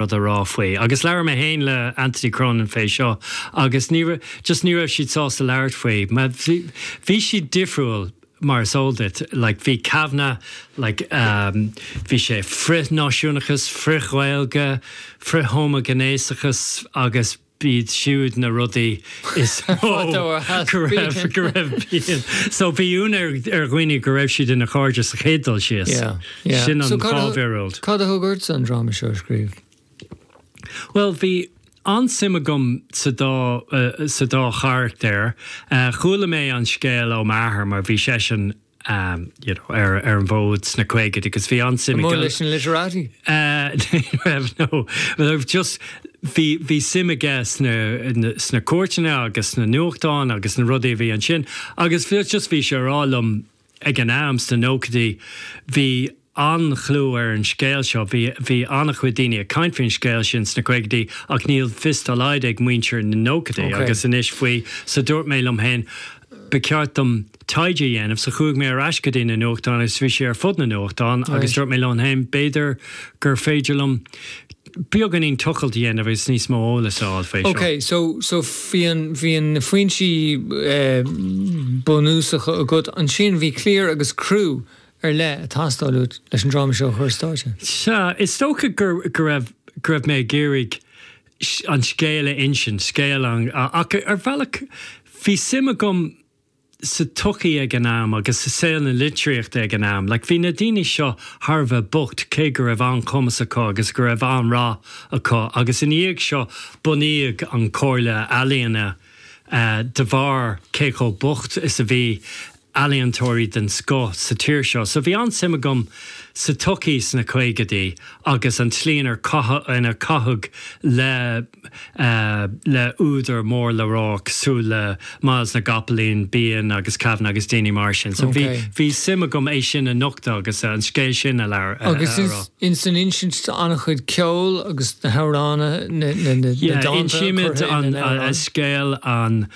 rud a rá faoi. Agus labhair mé féin le Anthony Cronin fé seo agus ní, just ní raibh siad sásta labhairt faoi. Bhí, bhí siad difriúil mar is eol duit, like bhí Kavanagh, like ehm, bhí sé frith-náisiúnachas, frith-Ghaeilge, frith-homaighnéasachas agus. b'iad siúd na rudaí is mó go raibh, go raibh Behan, so bhí ionadh ar dhaoine go raibh siad ina gcairde sa chéad dul síos. Yeah, yeah. Sin an mhíorúilt. Cad a thug ortsa an dráma seo a scríobh? Bhuel, bhí an-suim agam sa dá, sa dá charachtar. Chuala mé an scéal ó m'athair mar bhí seisean you know, ar an bhfód sna caogadaí agus bhí an-suim aige. An-mhór leis na literati? Ní raibh, no. Ach just, bhí, bhí suim aige sna, sna cúirteanna agus sna nuachtáin agus na rudaí a bhí ansin agus just bhí sé ag rá liom ag an am, sna nóchaidí, bhí, an-chlú ar an scéal seo, bhí, bhí an-chuid daoine ag caint faoin scéal sin sna caogadaí ach níl fios dá laghad ag muintir na nóchaidí Ok. agus anois faoi so dúirt mé liom féin ba cheart dom taighde a dhéanamh so chuaigh mé ar ais go dtí na nuachtáin agus bhí sé ar fud na nuachtán agus Right. dúirt mé liom féin b'fhéidir gur féidir liom beagáinín tochailte a dhéanamh agus níos mó eolas a fháil faoi Ok, seo. so, so bhí na, bhí na, na foinsí eh bunúsacha agat, ansin bhí cliar agus criú ar leith ag teastáil uait leis an dráma seo a chur ar stáitse? Sea, is dócha go raibh, go raibh mé ag iarraidh an scéal a insint, scéal an, ach ar bhealach bhí suim agam sa tsochaí ag an am agus i saol na litríochta ag an am. Like, bhí na daoine seo thar a bheith bocht, cé go raibh an-chumas acu agus go raibh an-rath acu, agus ina dhiaidh seo bunaíodh an Chomhairle Ealaíon de bharr cé chomh bocht is a bhí. ealaíontóirí den scoth sa tír seo, so bhí an-suim agam sa tsochaí sna caogadaí agus an tslí inar caitheadh, inar caitheadh le, le údair mór le rá cosúil le Myles na gCopaleen, Behan agus Kavanagh agus daoine mar sin. So bhí, bhí suim agam é sin a nochtadh agus an scéal sin a labhairt, a rá. Agus ins an insint tá an-chuid ceoil agus na hamhráin, na dánta curtha ina n-amhráin. Yeah, insímid an scéal an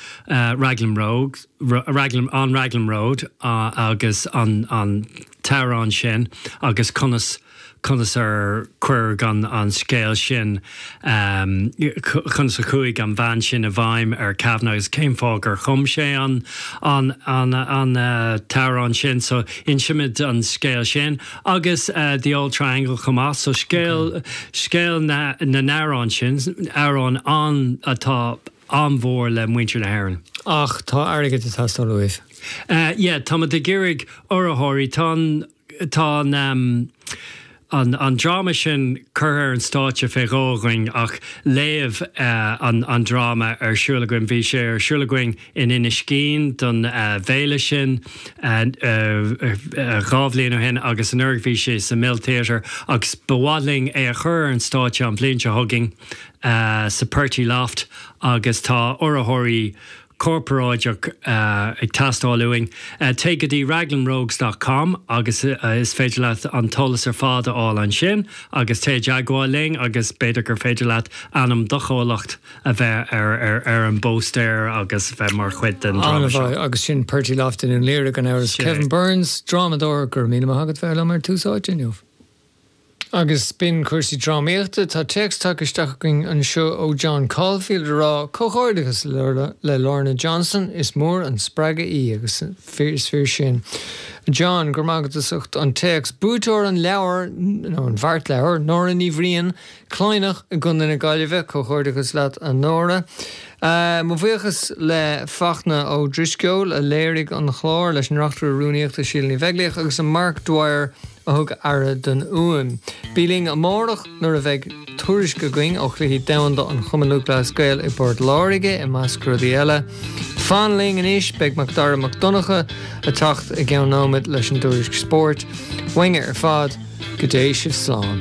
Raglan Road. an Raglan Road agus an t-amhrán sin agus conas conas ar cuireadh an an scéal sin conas a chuaigh an bhean sin i bhfeidhm ar Kavanagh agus cén fáth gur chum sé an an an an t-amhrán sin so insimid an scéal sin agus The Auld Triangle chomh maith so scéal scéal na na n-amhrán sin amhráin ann atá an-mhór le muintir na hÉireann. Ach tá airgead ag teastáil uaibh. Yeah, táimid ag iarraidh urraitheoirí. Tá an, tá an ehm, an, an dráma sin curtha ar an stáitse fé dhó againn ach léamh an dráma ar siúl againn. Bhí sé ar siúl againn in Inis Ghin don bhféile sin dhá bhliain ó shin agus anuraidh bhí sé sa Mill Theatre agus ba mhaith linn é a chur ar an stáitse an bhliain seo chugainn. sa Purty Loft agus tá urraitheoirí corporáideach ag teastáil uainn. Téigh go dtí Raglanrogues dot com agus is féidir leat an t-eolas ar fad a fháil ansin agus téigh i dteagmháil linn agus b'fhéidir gur féidir leat ainm do chomhlacht a bheith ar an bpóstaer agus bheith mar chuid den dráma seo. Ana-mhaith, agus sin Purty Loft i nDún Laoghaire gan amhras. Kevin Burns, drámadóir, go raibh míle maith agat bheith liom ar Tús Áite inniu. Agus b'in cúrsaí drámaíochta. Tá téacs tagtha isteach againn anseo ó John Caulfield ag rá, Comhghairdeachas le Lorna Johnson, is mór an spreagadh í agus is fíor sin. John, go raibh maith agat as ucht an téacs. Buaiteoir an leabhair, nó an bheartleabhair, Nóra Ní Bhriain, Cladhnach i gContae na Gaillimhe. Comhghairdeachas leat a Nóra. Mo bhuíochas le Fachtna Ó Drisceoil a léirigh an chlár, leis an Reachtaire Rúnaíochta Síle Ní Bheaglaoich agus le Mark Dwyer, a thug aire don fhuaim. Bí linn amárach nuair a bheidh tuairisc againn ó Chluichí Domhanda an Chumainn Lúthchleas Gael i bPort Láirge, i measc rudaí eile. Fan linn anois, beidh Macdara Mac Donncha ag teacht i gceann nóimead leis an dtuairisc spóirt. Uainne ar fad, go dté sibh slán.